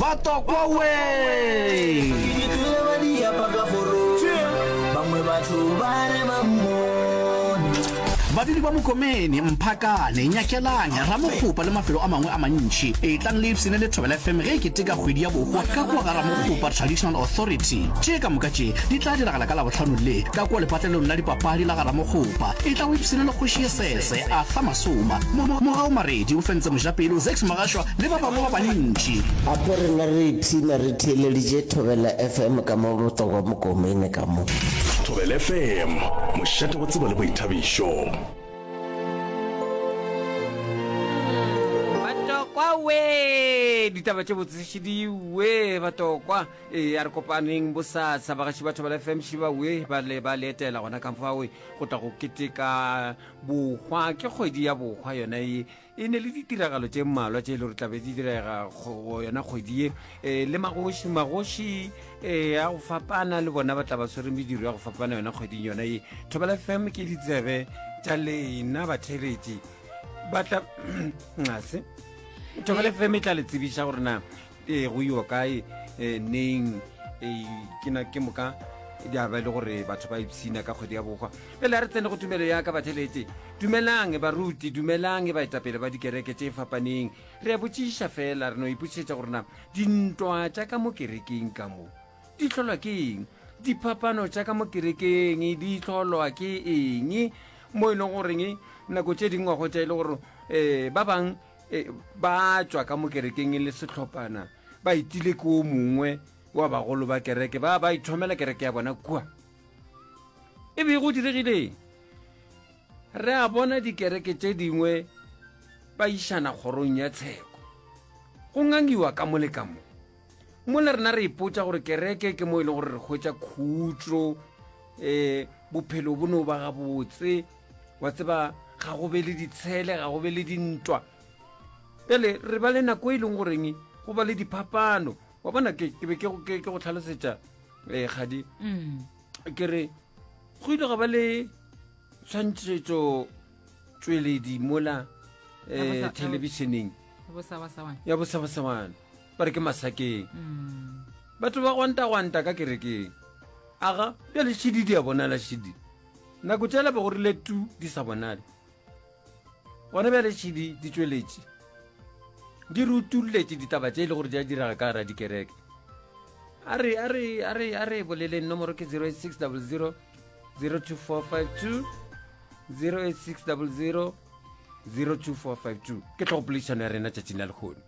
batokwa we ke tlile ba diapa ka foro bangwe batho ba re ba mmone babedi ba mokomene mphakane nyakelang ramokgopa le mafelo a mangwe a mantši e tlang le ipsene le thobela fm ge e keteka kgwedi ya boko ka kua ga ramokgopa traditional authority tše ka moka tše di tla diragala ka labotlhano le ka kua lepatlelong la dipapadi la ga ramokgopa e tla o ipsene le kgoši ye sese a fa masoma mogao maredi o fentse mojapele o zex magašwa le ba bangwe ba bantši. Apo rena re ipshina re theeleditše Thobela FM ka mo Botlokwa Mokomene ka mo. Thobela FM, mošate wa tsebo le boithabišo. Batokwa we, ditaba tše botsešediwe batokwa. E, a re kopaneng bosasa bagaši ba Thobela FM šiba we ba le ba letela gona ka fawe go tla go keteka bohwa ke kgwedi ya bohwa yona e e ne le ditiragalo tše mmalwa tše e le gore tlabe di direga go yona kgwedi ye um le magoši magoši um ya go fapana le bona ba tla ba tshwere mediro ya go fapana yona kgweding yona ye thobela fm ke ditsebe tša lena batheletši batla ngase thobela fm e tla le tsebiša gore na ee go yo kae um neng ke na ke moka di a ba e le gore batho ba ipshina ka kgwedi ya bokgwa pele a re tsene go tumelo ya ka batheletše dumelang baruti dumelang baetapele ba dikereke tše fapaneng re a botšiša fela re no ipotšišetša gore na dintwa tša ka mo kerekeng ka mo di tlholwa ke eng diphapano tša ka mo kerekeng di tlholwa ke eng mo e leng goreng nako tše dingwago tša e le gore um ba bangwe e, ba tšwa ka mo kerekeng e le setlhophana ba itile ke o mongwe wa bagolo ba kereke ba ba ithomela kereke ya bona kua e be go diregileng re a bona dikereke tše dingwe ba išana kgorong ya tsheko go ngangiwa ka mo le ka mo mona rena re ipotsa gore kereke ke mo e leng gore re hwetsa khutso um eh, bophelo bo no ba gabotse wa tseba ga go be le ditshele ga go be le dintwa pele re ba le nako e leng goreng go ba le diphapano wa bona ke be ke go tlhalosetsa um eh, gadi mm. ke re go ile ga ba le tshwantshetso tsweledi mola um eh, thelebišeneng ya bosabasawana ba re ke masakeng batho ba gwantagwanta ka kerekeng aga bjale šidi di a bonala šidi nako tšela be go rile tu di sa bonale gona bjale šidi di tšweletše di re utulletše ditaba tše e le gore di a diraga ka gara dikereke a re a re a re a re boleleng nomoro ke 086 00 02452 086 00 02452 ke tlhogopoledišano ya rena tšatšing la lekgono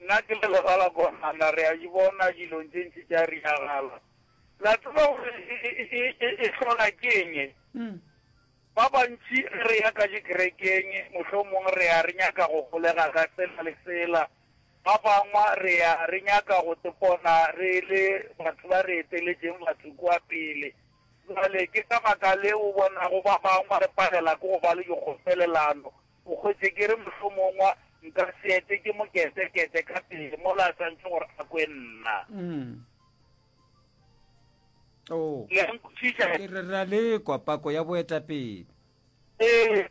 Nna ke le legala konana, re a di bona dilong tše ntši tša diragala. La tseba gore e, e, e, e hlola ke eng e? Ba bantši ge re ya ka dikerekeng, mohlomongwe re ya re nyaka go golega ka tsela le tsela, ba bangwe re ya re nyaka go tepona re le batho ba re eteletšeng batho kua pele. Bjale ke ka baka leo o bonago ba bangwe re palela ke go ba le dikgopelelano, O hwetše ke re mohlomongwa nka se etwe ke moketekete ka pele mola a santšwe gore a kwe nna. Le a nkwešiša? Ke re re a le kwa, pako ya boetapele. Ee.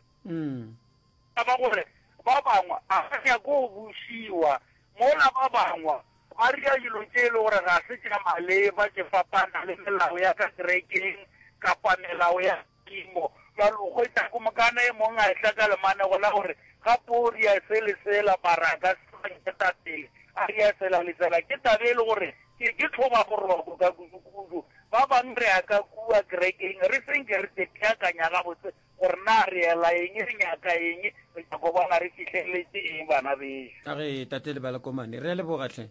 Ka ba gore ba bangwe a ba nyake go bušiwa, mola ba bangwe ba ria dilo tše e le gore ga se tša maleba, tše fapana le melao ya ka kerekeng kapa melao ya. Modimo, bja lo hwetša go mokana e mong a etla ka lemanego la gore, Ga poo ria se le sela, baraka, se ba nketapele, a ria sela le sela. Ke taba e le gore ke, ke tlhoba boroko ka kudukudu. Ba bang ria ka kua kerekeng re se nke re teteakanya gabotse gore na re ela eng, re nyaka eng, re nyaka go bona re fihleletše eng, bana bešo. A re, Tate le balakomane, ria leboga hle.